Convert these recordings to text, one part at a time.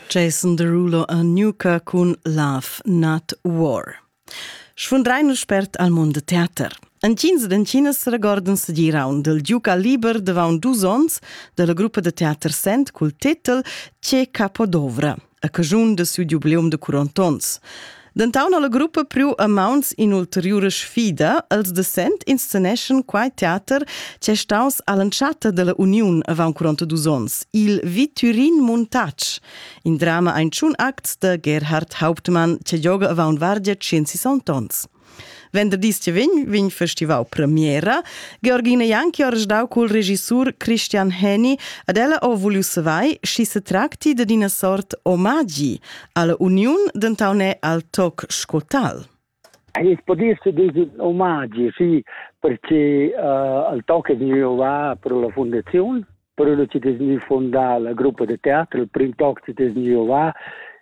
Jason Derulo a Nuka cun Love Not War. Sfundrein spert al mund de teater. An cins d'encinas regorden se girau del Duca Liber davant dus ons della gruppa de teater Sent cul titel Ce Capodovra, a cajun de su jubileum de 40 ons. Dentaun alla gruppa priu a mauns in'ulteriura sfida. Els de Sent insceneschan quai teater che staus all'entschatta della uniun avant 42 onns, il Viturin Muntatsch, in drama ein tschun acts de Gerhard Hauptmann che gioga avant vargia 160 onns. Venderdis che vegn vegn festivau premiera. Georgina Janki ha resdau cul regissur Christian Heni ad ella ho vuliu savai schi se tracti dad ina sort omagi alla uniun dentaune al toc scotal. Ins potesse dire omagi, sì, perché uh, al toc è venuto va per la fondazione Poi lo ci desni fondà la gruppa de teatro, il Print Talk ci desni va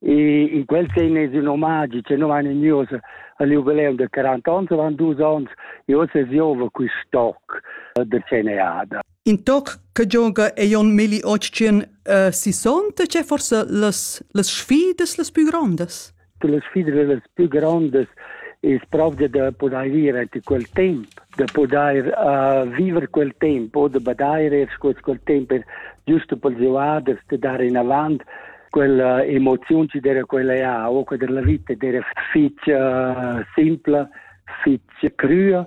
e in quel sei nes un omaggi, cioè non vanno news al jubileum del 40 anni, van dus anni e ora giova qui stock del CNAD. In toc che gioca è un milli 800 uh, 60, c'è forse las, las sfidas las più grandes? che la sfida las più grondas es propria da pudair vivere anche quel temp, da pudair uh, vivere quel temp o da badaire sco quel temp per giusto per giovaders de dare in avant quella emozione ci dera quella ha o che della vita dera fitch uh, simpla, fitch crua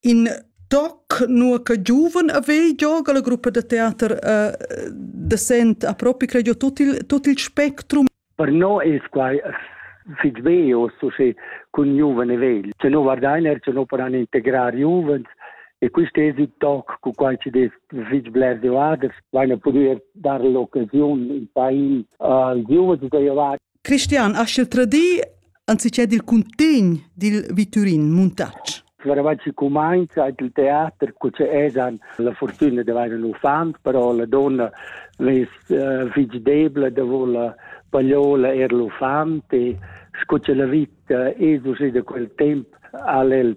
in toc nur che giuven a ve gioga la gruppa da teater uh, da sent a propi credo tut il, tut il spectrum per no il quai fit veo so che con giovane vegl se no vardainer se no paran integrar giovens e quist es il toc cu quai ci des fich bler de vaders vaine pudü dar l'occasiun in pain al giovens da llevar Cristian, has el tradì anziché dil cuntegn dil viturin Muntatsch? Varavant si cumainza il teater cu che esan la fortuna di avere un uffant, però la donna ves uh, fig debla de voler pagliola er l'uffant e scu che la vita esus da quel temp al el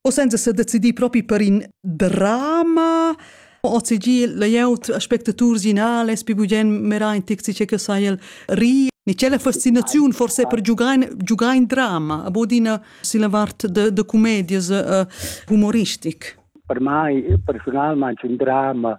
O senza se decidir propi per in drama OCG layout aspectaturs pi bugen mera in taxi che sai el ri ni c'è la fascinazione forse per giocare giocare in drama a ina si la vart de de comedias uh, humoristic per mai personalmente un drama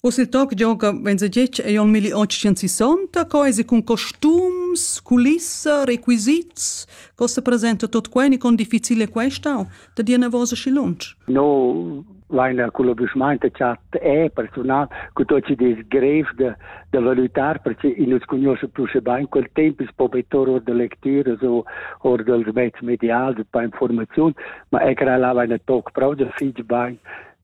Oz il toc gioca venzagetg ei en 1860, co esi cun costums, culissa, requisits, co se presenta tot quei ni con difficile questa, da dir nervosa și lunch? No, Weiner culobișmainte chat e personal cu tot ce des grev de, de valutar perché i nus conosce più se bain quel tempo is pobetor or de lecture o or del mezzo medial de pa informazion ma e crea la Weiner toc prov de fig bain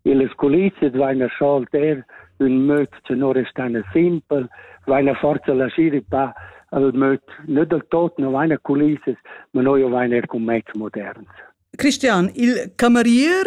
Illes culizes vaina scholter ün möd tenor restana simpel, vaina forza lascir i pa al möd nö dal tot, no vaina culizes, ma noi o vaina er cun mezz moderns. Christian, il camerier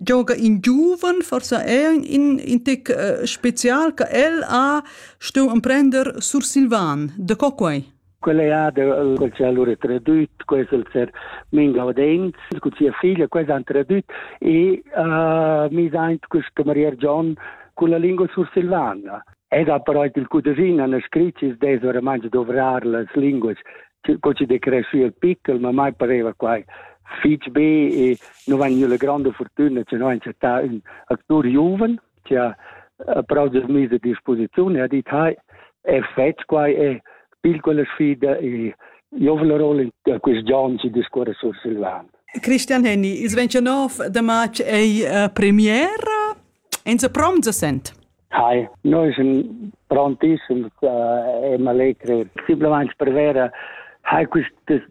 gioga in giuven, forse è in, in tic uh, special che el ha stu emprender sur Silvan. De co quei? Quella ha quel che ha lura tradüt, quels els er min gaudents, con sia figlia, quels han tradüt e uh, mi daint questa Maria John con la lingua sursilvana. Ed ha però il cudrin han scrit ci des ora mangi dovrar las linguas co ci de cresci il pickel, ma mai pareva quai fitch be e non van le grande fortuna, che non è stato un attore giovane. che ha proget mis a disposiziun e ha dit hai è fetg quai è pil quella sfida e giovna rolla da quest John ci discorre sur Silvan. Christian Henny, il 29 de march è uh, premiera, enza prom se sent? Hi, noi siamo prontissimi uh, e mi allegri. Simplemente per vera, hai queste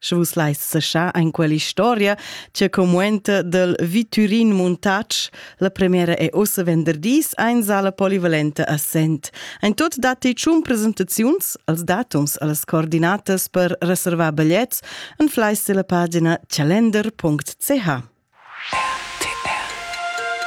Sche vus leis seschar en quell'historia che commuenta del Viturin Muntatsch, la premiera è ussa venderdis ein sala polivalente a Sent. Ein tot datti tschun presentaziuns als datums allas coordinatas per reservar bigliets en fleis della pagina calender.ch.